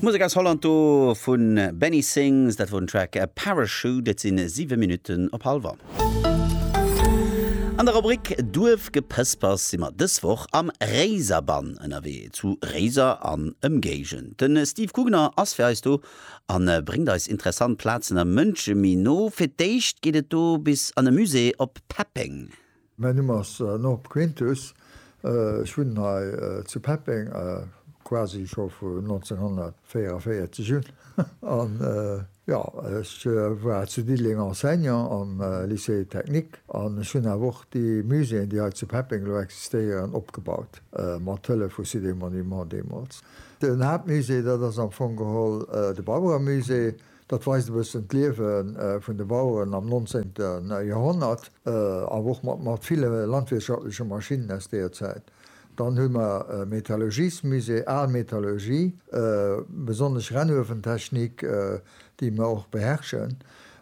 Musek aus Holland do vun Benny Sings, dat wor den Track Parachute. Et sinn 7 Minutten op hal wa. An der Rubrik Duerfgepëspers si mer dës Woch am Réiserbann ënnerwee, zu Réiser an Ëmgéigend. Den Steve Gugner ass fir eis do an bréngt eis interessant Plazen a Mënsche méi no. Fir d'éischt geet et do bis an e Musée op Peppeng. Mäin Numm ass Norb Quintus, ech wunnen hei zu Peppeng quasi scho vu 1944 un, an jo, ech war zu Diddeleng Enseignant am Lycée technique an ech hunn awer och déi Muséeën, déi hei zu Peppeng elo existéieren, opgebaut, mat Hëllef vu Cité Monuments deemools. Den Haaptmusée, dat ass am Fong geholl de Barbara-Musée, Dat weist e bëssen d'Liewe vun de Baueren am 19. Joerhonnert, awer och mat ville landwirtschaftleche Maschinnen aus deeër Zäit. Dann hu mer e Metallurgiesmusée, al Metallurgie, besonnesch Rennuewentechnik, déi mer och beherrschen.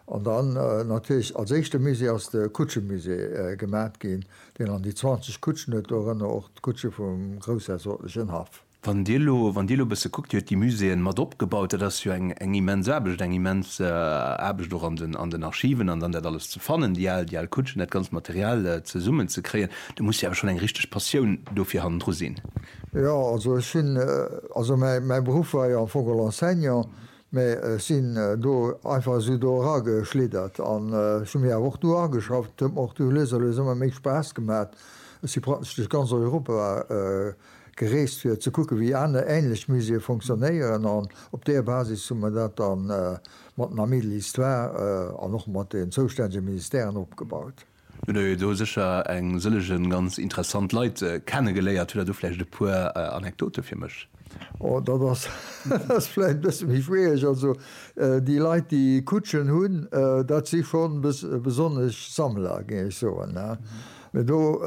An dann natierlech als éischte Musée ass de Kutschemusée gemat ginn, deen an déi 20 Kutschen huet, dorënner och d'Kutsche vum groussherzoglegen Haff. Wann Dir elo, wann Dir elo e bësse kuckt, Dir huet déi Muséeën mat opgebaut, dat ass jo eng, eng immens Aarbecht, eng immens Aarbecht och an den, an den Archiven an dann dat alles ze fannen, déi al, déi al Kutschen, dat ganzt Material zesummen ze kréien. Do muss jo awer schonn eng richteg Passioun dofir hannendru sinn. Jo, also ech sinn, also mäi, mäi Beruff war jo am Fong geholl Enseignant, mä ech sinn do einfach esou do erageschliddert an ech hu mir awer och do ageschafft. Et huet mer och du lues a lues ëmmer méi Spaass gemat. Ech si praktesch duerch ganz Europa gereest fir ze kucke wéi aner änlech Muséeë fonctionnéieren an op deer Basis hu mer dat da mat dem Ami de l'Histoire an och mat den zoustännege Ministèren opgebaut. Lo hutt Der jo do sécher eng sëllege ganz interessant Leit kennegeléiert. Hutt Der do vläicht e puer Anekdote fir mech? Oh, dat ass vläicht e bësse méi schwiereg. Also déi Leit déi Kutschen hunn, dat si schonn besonnesch Sammler, géing ech soen. Mee do,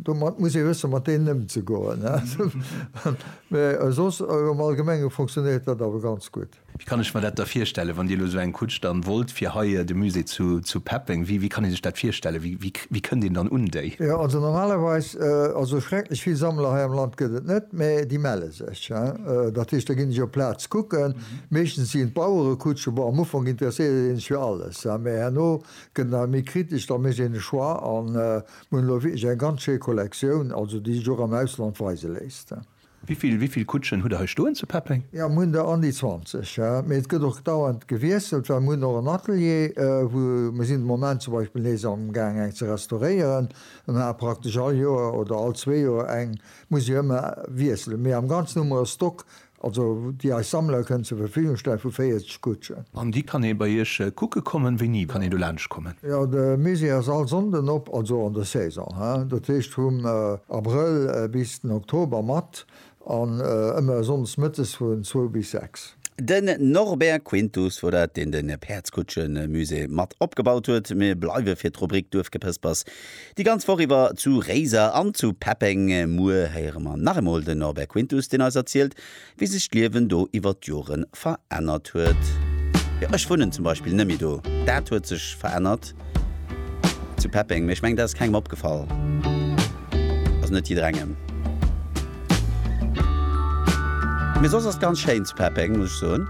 domat muss ee wësse mat deenen ëmzegoen. Mee soss am Allgemenge fonctionéiert dat awer ganz gutt. Wéi kann ech mer dat da virstellen, wann Dir elo esou eng Kutsch dann wollt fir hei de Musée zu peppen? Wéi kann ee sech dat virstellen? Wéi kënnt een dann un déi? Jo, also normalerweis, also schrecklech vill Sammler hei am Land gëtt et net, mee déi melle sech. Dat heescht, da ginn ech op d'Plaz kucken. Meeschtens sinn et Bauerekutschen. Bon, am Ufank interesséiert ee sech fir alles, mee herno Gëtt nach méi kritesch, da mécht een e Choix. A mir hunn elo wierklech eng ganz schéi Kollektioun, also déi sech och am Ausland weise léisst. Wéi vill Kutschen hutt Der hei stoen zu Peppeng? Jo, mir hunn der an déi 20, mee et gëtt och dauernd gewiesselt, well mir hunn och en Atelier, wou mir sinn de Moment zum Beispill nees amgaang eng ze restauréieren. Mir maache praktesch all Joer oder all zwee Joer eng, muss jo ëmmer wiesselen, mee am Ganzen hu mer e Stock Also déi eis Sammler kënnen zur Verfügung stellen, vu 40 Kutschen. An déi kann ee bei iech kucke kommen? Wéini kann een do laanscht kommen? Jo, de Musée ass all Sonnden op, also an der Saison, he, dat heescht vum Abrëll bis den Oktober, mat an ëmmer Sonndes mëttes vun zwou bis sechs. Den Norbert Quintus wor dat, deen de Päerdskutschen-Musée mat opgebaut huet. Mir bleiwe fir d'Rubrik Duerfgepëspers Déi ganz Woch iwwer zu Réiser an zu Peppeng. Muer héiere mer nach eemol den Norbert Quintus, deen eis erzielt, wéi sech d'Liewen do iwwer d'Jore verännert huet. Jo, ech wunnen zum Beispill nëmme do. Dat huet sech verännert zu Peppeng, mee ech mengen, dat ass kengem opgefall. Also net jidderengem. Mee soss ass et ganz schéin zu Peppeng, muss ech soen.